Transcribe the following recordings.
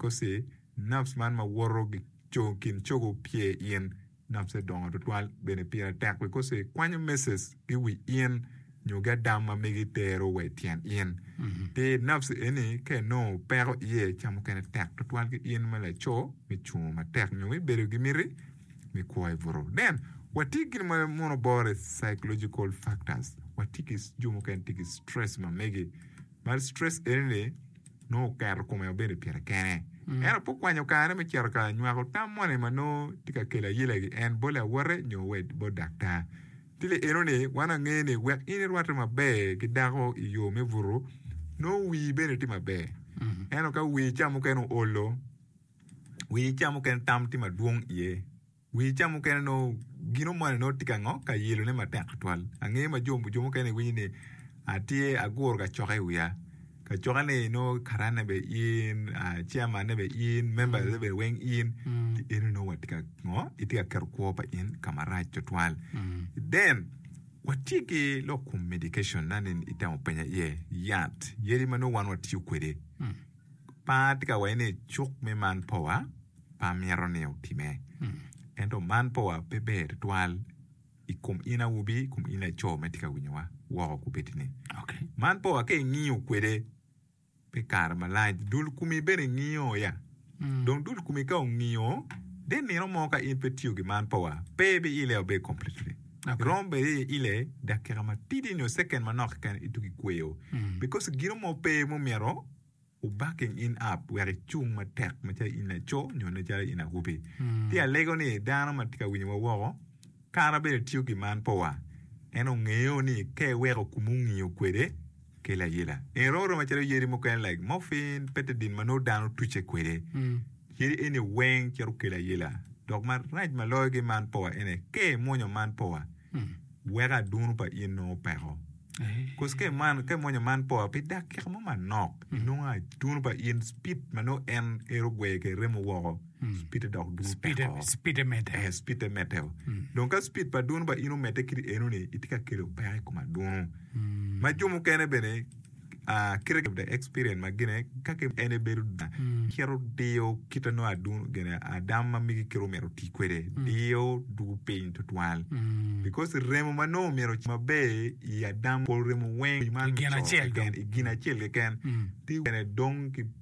Kosi, Nafs man ma woto kin cogo opye in, nafse dongo tutwal bene pire tek wi kosi kwanyo meses ki wi in nyo gadam ma megi tero wa i tyen in. Pi nafs eni ka inongo peko iye ca mukene tek tutwal ki in ma laco me cungo matek nyo me bedo ki miti me kwo i butu. Then, watye ki gin ma mono bore psychological factors. Watye ki jo mukene tye ki stress ma megi. Bad stress eni ni nongo oketo kome obedo i pire kene. Ento pe okwanyo kare me cito ka nywako tam moni ma nongo tye ka kelo ayela ki en bot lawote nyo wa bot daktar. Ki le eno ni wan wangeyo ni wek in irwatte maber ki dako i yo me butu, nongo wii bene tye maber. Ento ka wii ca mukene oolo, wii ca mukene tam tye madwong iye. Wi ca mukene onongo gin omone nongo tye ka ngo ka yelo ne matek tutwal ange ma jo mukene gi winyo ni atye aguro ka coke i wiya ka coke ni nongo karan ne bene in chairman ne bene in members ne bene weng in eno nongo watye ka ngo itye ka keto kwo pa in ka marac tutwal then watye ki lok kom medication na ni itemo penya iye yat yadi ma nongo wan watiyo kwede Par atye ka waci ni cuk me man powa pe amito ni otime. Ento man powa pe ber tutwal i kom in awobi, i kom in laco ma itye ka winyowa woko kubedini. Okay. Man powa ka ingiyo kwede pi kare malac, dul kumi bene ngiyo ya. Mm. Dong dul kumi ka ongiyo, de nino mo ka in pe tiyo gi man powa, pe ibiileo be completely. Dok romo bedo iye ile dakika matidi nyo second manok keken ituk ikweyo because gino mo pe mumito o backing in up wek icung matek macalo in laco nyo macalo in awobi. Ti alego ni dano ma tye ka winyowa woko kara bene tiyo ki man powa en ongeyo ni ka iweko kumu ngiyo kwede ki layila. En rom aroma calo yadi mukene like morphine, betadine ma nongo dano tucce kwede. Yadi eni weng cito kelo ayila. Dok marac ma loyo ki man powa ene, ka imwonyo man powa, weko adunu pa in nongo peko. Cause ka iman- ka imwonyo man powa pi dakika mo manok, inongo adunu pa in speed ma nongo en ero gweye ki remo woko. Speed dok dwong teko. Speed e, speed e medde. Eh, speed te medde o. Dong ka speed pa dwunu ba in omedde kit eno ni, itye ka kelo peko i kom adwunu. Ma jo mukene bene, ah, kite of the experience ma gine, ka ki en ebedo dwuna, cito diyo kite nongo adwunu, gine, adam ma migi kite omito oti kwede, diyo dwogo piny tutwal. Because remo ma nongo omyero ocam maber i adam, pol remo weng, man Gin co acel keken, dong. i gin acel keken, ti bene dong ki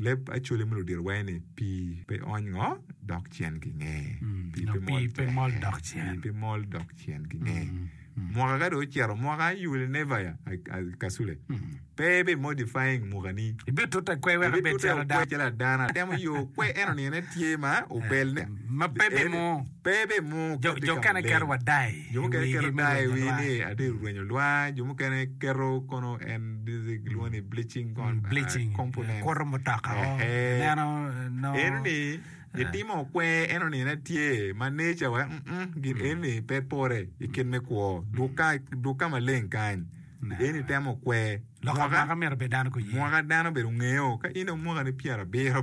Leb Acholi me Ludito waye ni, Pii pe ony ngo, dok cen ginge. Pii pe mol pe mol dok cen. Pii pe mol dok cen ginge. Mwaka ka dong ocito, mwaka I will never ya, Kasule. Pe ibe modifying muka ni. Ibe tute kwe wek ibed calo dano. Calo dano. Atemo yo kwe eno nino ne tye ma obel ne. Ma pe be mo. Pe ibimung kadi ka maleng. Jo mukene keto dai i wi ni atye ka rwenyo lwa, jo mukene keto kono en gilwongo ni bleaching component. Enoni itimo kwer enoni ne tye ma nature wa gin enoni pe pore i kit me kwo duk ka maleng kany eni itemo kwer mwaka dano obed ongeyo ka in dong mwakani pyerabiro.